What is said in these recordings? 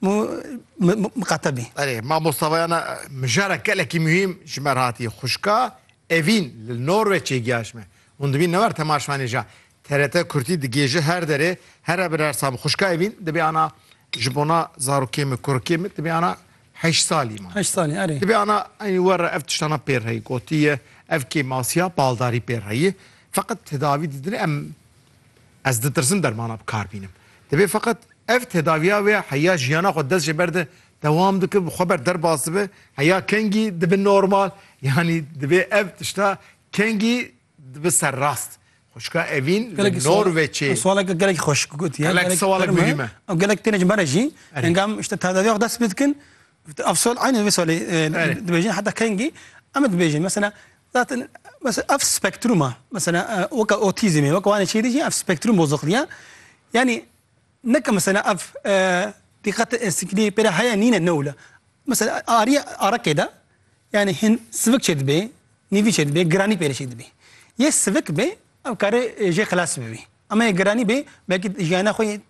Mu miqatebî. Erê, ma Mostafayana mijara gelekî muhîm ji me re hatiye. Xwişka Evîn li Norweçê giya ji me. Hûn dibînin ne war tema ji Şwanêja. TRT Kurdî digihêje her derê, here bi her sal. Xwişka Evîn dibê ana ji bona zarokê min, kurikê min dibê ana heşt salî ma. Heşt salî, erê. Dibê ana eynî we re ev tiştana pê re heye. Gotiye ev kêmasiya baldarî pê re heye. Feqet tedavî didin em. Ez ditirsim dermana bi kar bînim. Divê feqet ev tedaviya wê heya jiyana xwe dest ji ber de dewam dike bi xwe ber derbas dibe heya kengî dibe normal yanî divê ev tişta kengî dibe serrast. Xwişka Evîn li Norweçê. Ev swaleke gelekî xweş gotiye. Gelek sewalek mirî me. Ew gelek têne ji me re jî engam ji te tedaviya xwe dest pê dikin ev swal aynî wê swalê dibêjin heta kengî em ê dibêjin mesela Zaten mesela ev spektruma mesela weka otizmê weka wanê çêdî jî ev spektrum bozuqliya yanî neke mesela ev dîqete êstikî pêra heye nîne newle mesela ariye arekê de yani hin sivik çêdibê nîvî çêdibê giranî pêrê çêdibê yê sivik bê ev karê jê xilas bibî ama yê giranî bê belkî jiyana xwe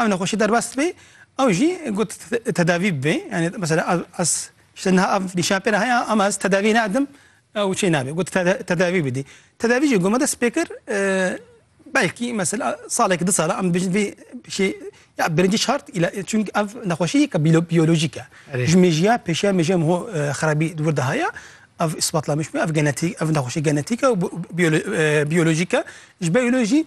Ev nexweşî derbas dibe ew jî got tedavî bibe. Yanî mesela ez ji te niha ev nîşan pê re heye ama ez tedaviyê nadim ew çê nabe. Got tedavî bidî. Tedavî jî ku me dest pê kir belkî mesela salekî du sal e em dibêjin vê şê ya birincî şart çunki ev nexweşî yek e biyolojîk e. Ji mêjiya pêşiya mêjiya min ho xerabî di wir de heye. Ev îsbatlamiş bûye ev genetîk ev nexweşî genetîk e û biyolojîk e. Ji ber wê jî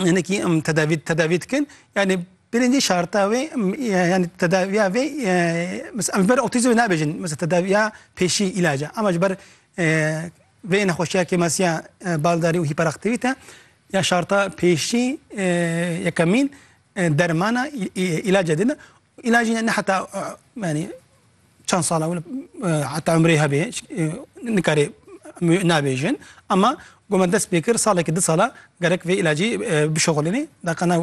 hinekî tedavî tedavî dikin yani birinci şarta wê yani tedaviya vê em ji ber otîzm nabêjin mesela tedaviya pêşî îlaca ama ji ber vê nexweşiya kêmasiya baldarî û hîperaktivîte ya şarta pêşî yekemîn Dermana îlaca didin. Îlacî ne heta yanî çend sala heta umrê hebê nikarê nabêjin ama ku me dest pê kir salekî di sala gerek vê îlacî bişoxilînî daqana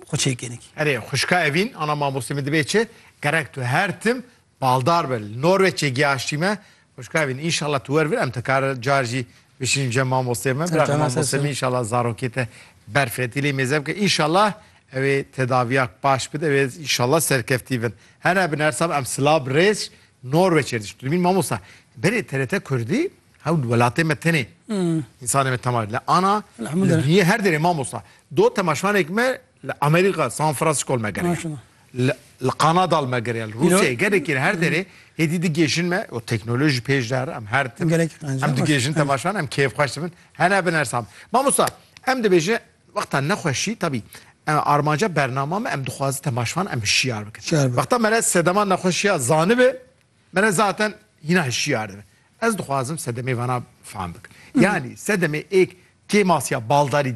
xwe çêkênî. Erê xwişka Evîn, ana mamostê min dibê çi? Gerek tu her tim Baldar be li Norweçê giyaştî me. Xwişka vîn înşallah tu wer vir em tekar car jî bişînim cem mamosteyê me. Biraxê mamosteyê me înşallah zarokê te berfetî lê mêze bike. Înşallah ewê tedaviya baş bide ewê înşallah serkeftî bin. Hene bin her sab em silav bi rêz Norweçê diş. Tu dibîn mamosta berê TRT Kurdî hew li welatê me tenê însanê me temaş le ana li duyê her derê mamosta do temaşvanêk me Li Amerîka San Francisco li me gere ye. Li li Kanada li me gere ye. Li Rûsyayê gelekî li her derê hêdî digêjin me û teknolojî pêş de here em her tim. Gelekî qencî Em baş. digêjin temaşan em kêfxweş dibin. Hene bin her sam. Mamosta em dibêje wexta nexweşî tabî e, armanca bernama me em dixwaze temaşvan em hişyar bikin. Hişyar bikin. Wexta mere sedema nexweşiya zanibe mere zaten hîna hişyar dibe. Ez dixwazim sedemê vana fam bikin. Yanî sedemê êk kêmasiya baldarî